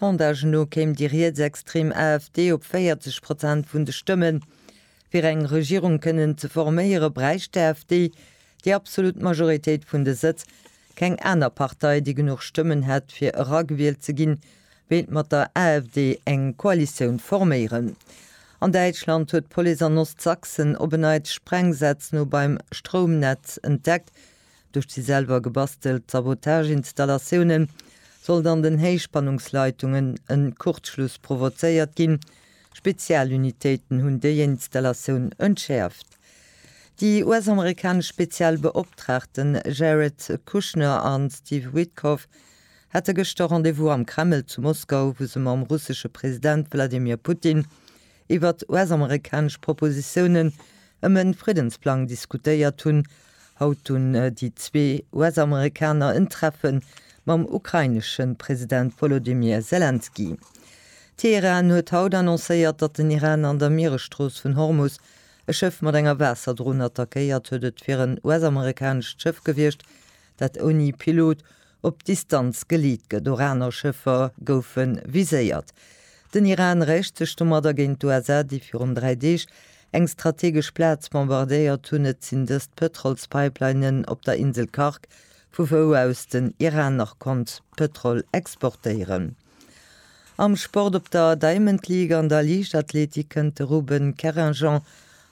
Sondage no kéim déi rietsextrem AfD op 40 Prozent vun de Stëmmen. Fir eng Regierung kënnen ze forméiere bräicht d'AfD déi absolut Majoritéit vun de Sëtz. Keng aner Partei, déi genuch Stëmmen hätt fir eragewielt ze ginn, wéilt mat der AfD eng Koalitioun forméieren. An Däitschland huet d'Police an Ostsachsen op en Neits Sprengsätz no beim Stroumnetz entdeckt. Duerch déi selwer gebastelt Sabotage-Installatioune sollt an den Héichspannungsleitungen e Kurzschluss provozéiert ginn. Spezialunitéiten hunn déi Installatioun entschäerft. Déi US-amerikanesch speziell Beoptraagten Jared Kushner a Steve Witkoff hate gëschter Rendez-vous am Kreml zu Moskau, wou se mam russesche President Wladimir Putin iwwer d'US-amerikanesch Propositiounen ëm e Friddensplang diskutéiert hunn. Haut hunn déi zwee US-Amerikaner en Treffe mam ukrainesche President Wolodymyr Selenskyj. Teheran huet haut annoncéiert, datt den Iran an der Mieresstrooss vun Hormus e Schëff mat enger Waasserdron attackéiert huet. Et wier en US-amerikanescht Schëff gewiescht, dat ouni Pilot Op Distanz geleetge Doraner-Schëffer goufe viséiert. Den Iran räicht sech domadder géint d'USA, déi virun dräi Deeg eng strategesch Plaz bombardéiert hunn. Et sinn dëst Pëtrolspipelinen op der Insel Karg, vu wou aus den Iran nach konnt Pëtrol exportéieren. Am Sport op der Diamond League an der Liichtathletik kënnt de Ruben Kerringent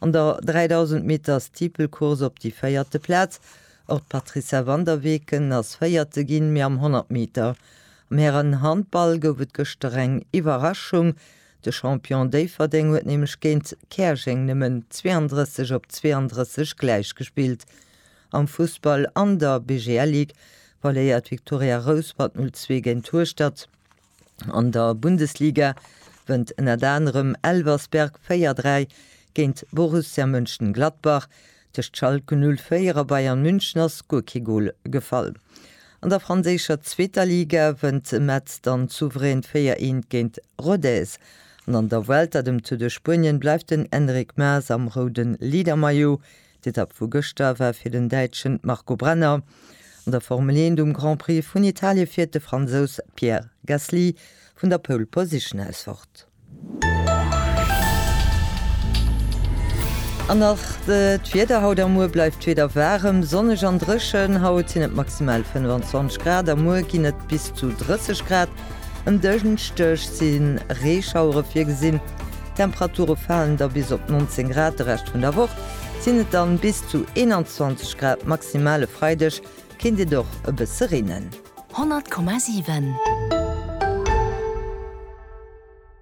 an der 3000 Meter Steeplecourse op déi véierte Plaz. Och d'Patricia Van der Weken ass Véierte ginn, mee am 100 Meter am Hären-Handball gouf et gëschter eng Iwwerraschung. De Champion Déifferdeng huet nämlech géint Käerjeng nëmmen 32 op 32 gläichgespillt. Am Fussball an der BGL Ligue verléiert d'Viktoria Rouspert 0 zwee géint Hueschtert. An der Bundesliga wënnt ënnert anerem Elversberg 4 dräi géint Borussia Mönchengladbach. Tëscht Schalke 04 a Bayern München ass guer kee Gol gefall. An der franséischer zweeter Liga wënnt Metz dann souverän 4 eent géint Rodez. An an der Vuelta, dem Tour de Spuenien, bleift den Enric Maes am roude Leadermaillot. D'Etapp vu gëschter war fir den Däitschen Marco Brenner. An der Formel 1 um Grand Prix vun Italie fiert de Fransous Pierre Gasly vun der Pole Position aus fort. An nach d'Wieder, Haut a muer bleift d'Wieder waarem, sonneg an dréchen. Haut sinn et maximal 25 Grad a muer ginn et bis zu 30 Grad. En Dënschdeg si Reeschauere virgesinn, d'Temperature falen da bis op 19 Grad. De Rescht vun der Woch sinn et dann bis zu 21 Grad maximal. E Freideg kéint et och e bësse reenen. 100,7.